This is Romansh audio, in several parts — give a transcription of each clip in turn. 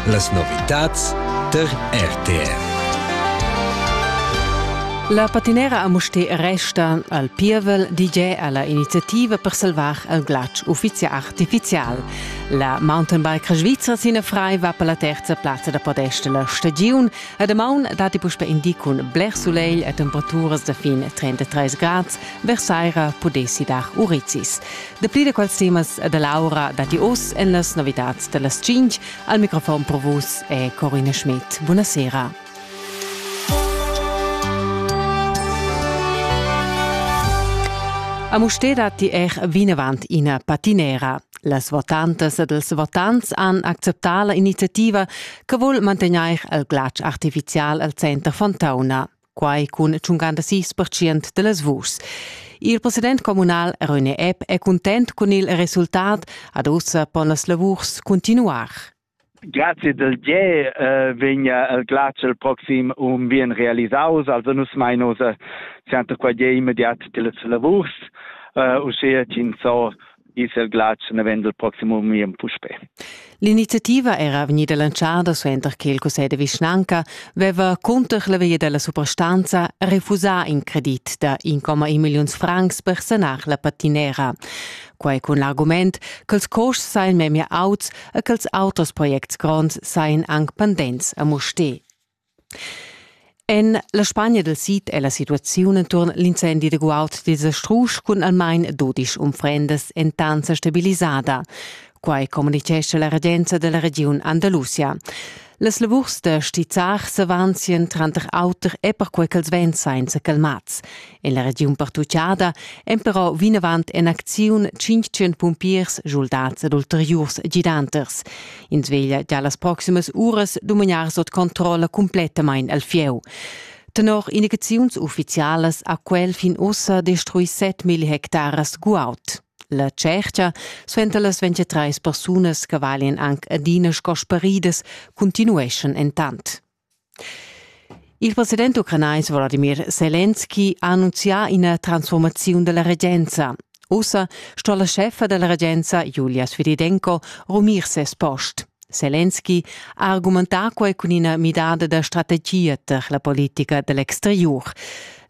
Las novitads tar RTR. La patinera a Musté resta al pievel DJ alla iniziativa per salvar il glatsch uffizial artificial. La mountainbike svizra Sina Frei va per la terza plazza da podesta la stagiun e damaun dati puspe indicun bler soleil e temperaturas da fin 33 grads, versaira pudessi dar urizis. Dapli da quels temas da Laura datti oz en las novitads da las tschintg. Al microfon pro vus è Corina Schmidt. Buonasera. A Mustér datti er vinavant ina patinera. Las votantas ed els votants han acceptà la iniziativa che vul mantegnair il glatsch artifizial al center Fontauna. quai cun 56 percent dellas vuschs. Il president communal René Epp è cuntent cun il resultat, ad ussa pon las lavurs continuar. Grazie del ge eh, vegna el glacial proxim um bien realisaus, also nus mainos sianta qua ge immediat delles lavurs, uh, uschea cin so ils el glatsch ne vend il proximo mien puspe. L'iniziativa era vegnida lanciada suenter che il Cussegl de vischnanca veva cunter la via della suprastanza refusà in credit da 1,1 milliuns francs per sanar la patinera. Quai cun l'argument ch'els costs seien memia auts e ch'els auters projects gronds seien anc pendents a Musté. En la Spagna dal sid è la situaziun enturn l'incendi da guaud dils strusch cun almain dudisch unfrendas entanza stabilisada. Quai communitgescha la regenza da la regiun Andalusia. Las lavurs da stizzar s'avanzien tranter auter e perquei ch'els vegn sainza calmats. En la regiun pertuchada èn però vinavant en acziun 500 pumpiers, schuldads ed ulteriurs gidanters. Ins veglia già las proximas uras dumagnar sut controlla cumplettamain al fieu. Tenor indicaziuns uffizialas ha quel fin ussa destruì 7.000 hectares guaud. La tschercha suenter las 23 persunas che valian anc adina sco sparidas continueschan entant. Il president ucranais Wladimir Selenski ha annunzià ina transfurmaziun da la regenza. Ussa sto la scheffa da la regenza Julia Svedidenko rumir ses post. Selenski ha argumentà quai cun ina midada da strategia tar la politica da l'exteriur.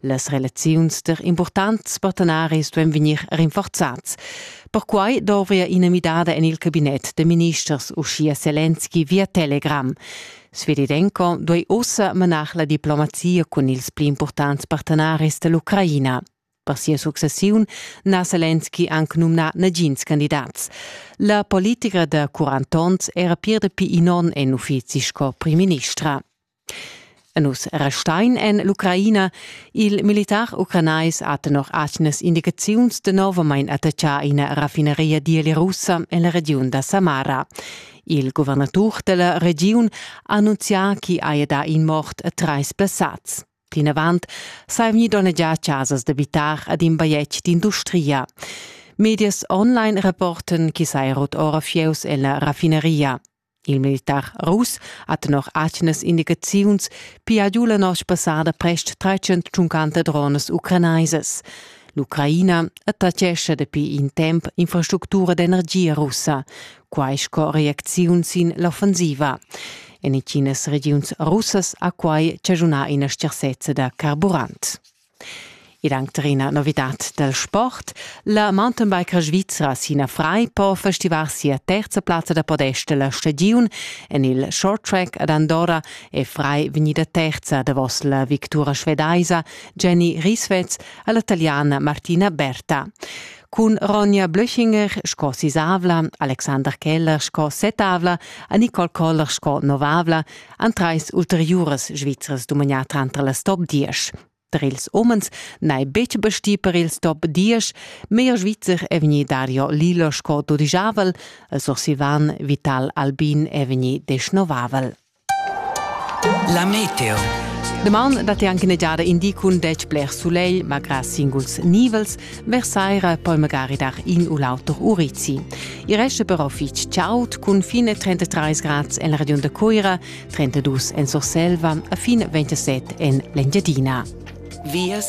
Las relaziuns tar impurtants partenaris duan vegnir rinforzads. Perquai dovria ina midada en il cabinet da ministers, uschia Selenski via Telegram. Sveridenko duei ussa menar la diplomazia cun ils pli impurtants partenaris dell'Ucraina. Per sia successiun n'ha Selenski anc numnà nagins candidats. La politica da 40 onns era pir dapi in onn en uffizi sco primministra. E nus restein en l'Ucraina. Il militar ucranais ha tenor atgnas indicaziuns danovamain attaccà ina raffineria dielia russa en la regiun da Samara. Il guvernatur della regiun ha annunzià chi haja dà in mort e trais blessats. Plinavant sai vgni donnegià chasas d'abitar ad in bajetg d'industria. Medias online rapporten chi sai rot ora fieus ella raffineria. Il militar rus ha tenor atgnas indicaziuns pia giu la nosch passada prest 350 drones ucranaisas. L'Ucraina attachescha dapi in temp infrastructura d'energia russa, quai sco reacziun sin l'offensiva. En intginas regiuns russas ha quai chaschunà ina stgarsezza da carburant. Ed anche una novità del sport. La mountainbiker svizra Sina Frei può festivar sia terza plazza da podest della stagiun en il short track ad Andorra è Frei vegnida terza davos la victura svedaisa Jenny Rieswetz alla italiana Martina Berta. cun Ronja Blöchinger sco sisavla, Alexander Keller sco setavla e Nicole Koller sco novavla han trais ulteriuras svizras dumagnà tranter las top 10. Per ils umens n'è betg bestì per ils top 10, meglier svizzer è vegnì Dario Lilo sco dudigiavel e sursivan Vital Albin è vegnì desnovavel. La meteo. Daman dat anche negiada indi cun detg bler sulegl, malgrà singuls nivels, versaira poi magari dar in u l'auter urizi. I resta però fitg chaud cun fine 33 grad en la regiun da Coira, 32 en Surselva e fin 27 en l'Engiadina. Vias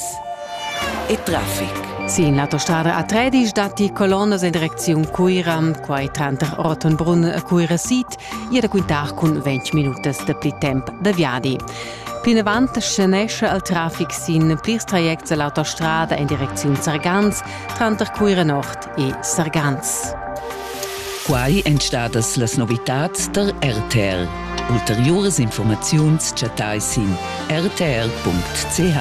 e traffic. Sin l'autostrada a Tredisch datti colonnas en direcziun Cuiram, quai tranter Ortenbrunn e Cuirasit, ir da quintar cun 20 minutas da pli temp da viadi. Plinavant scenesce il traffic sin plirs trajects a l'autostrada en direcziun Sargans tranter Cuira Nord e Sargans. Quai èn stadas las novitads tar RTR. Ulteriuras informaziuns chattai sin rtr.ch.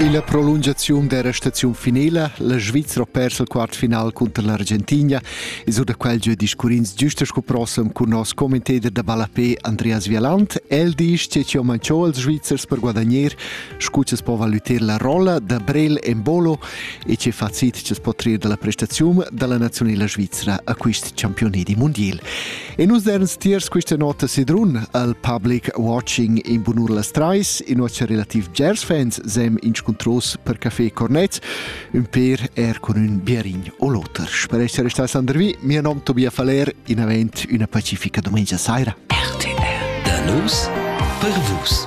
E la prolungaziun dera staziun finela, la Svizra persa il quartfinal cunter l'Argentina e sur da quel giu discurrins giusta sco prossem cun nos commentator da ballapé Andreas Vialant. El dice che ci ho manchò als Svizzers per guadagnar, scu che po valutar la rolla da Brel Embolo E che facit chi's po trir da la prestaziun da la naziunela svizra a quist championi di mundiel. E nus derns tiers quista nota sidrun al public watching in bunur las trais, in nossa relativ jazz fans sem inscuntros per Café Cornets, un per er con un biarin o l'oter. Per essere restas Andrvi, mio nom Tobias Faller, in avent una pacifica domenica saira. RTR. Da nus per vus.